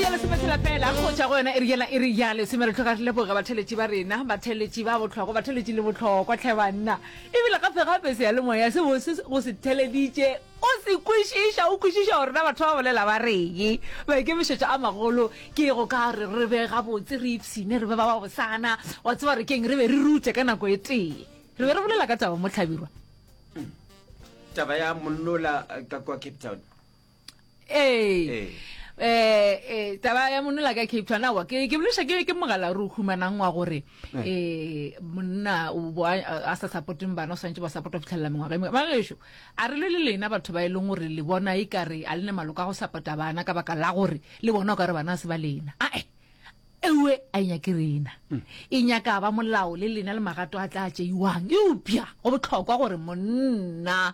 ya lesome tshela fela go tšwa go yona iri yela iri ya lesome re tlhoka re leboge batheletši ba rena batheletši ba bohlokwa batheletši le bohlokwa tlhe banna ebile gape gape seyalemoya se bose go se theleditše o se kwešiša o kwešiša gore na batho ba bolela ba reye maikemišetšo a magolo ke go ka re re be gabotse re ipshine re be ba ba bosana wa tseba re keng re be re rute ka nako e tee re be re bolela ka taba mo tlhabirwa taba ya monnola eh, ka kwa cape town ee eh, eh taba ya monola ka cape town awa ke ke boleša ke ke mogala re o humanang wa gore um monna a sa supporteng bana o swantse ba support go fitlhelela mengwaga e mengwe bagešo a re le le lena batho ba e leng gore le bona e kare a le ne maloko a go support-a bana ka baka la gore le bona o ka re bana se ba lena ae ewe a inyake rena hmm. e nyaka ba molao le lena le magato a tla tšeiwang eupša go botlhokwa gore monna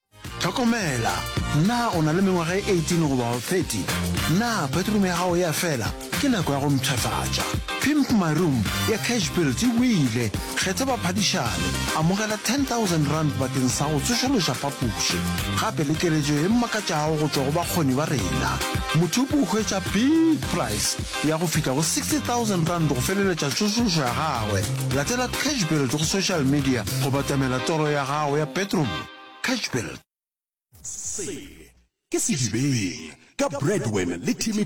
Tlhokomela! Na o na le mengwaga e 18 goba wa 30? Na bedroom ya gago ya fela? Ke nako ya go mpshafatša. Pimp My Room ya Cash Built e buile, Kgetha baphadišani, amogela R10,000 bakeng sa go tsošološa phapoši, gape le keletšo e mmakatšago go tšwa go bakgoni ba rena. Mothopi o hwetša big price ya go fihla go R60,000 go feleletša tsošološo ya gagwe. Latela Cash Built go social media go batamela toro ya gago ya bedroom. Catchbuild. Se ke sedibeng ka Bradwin le Timmy.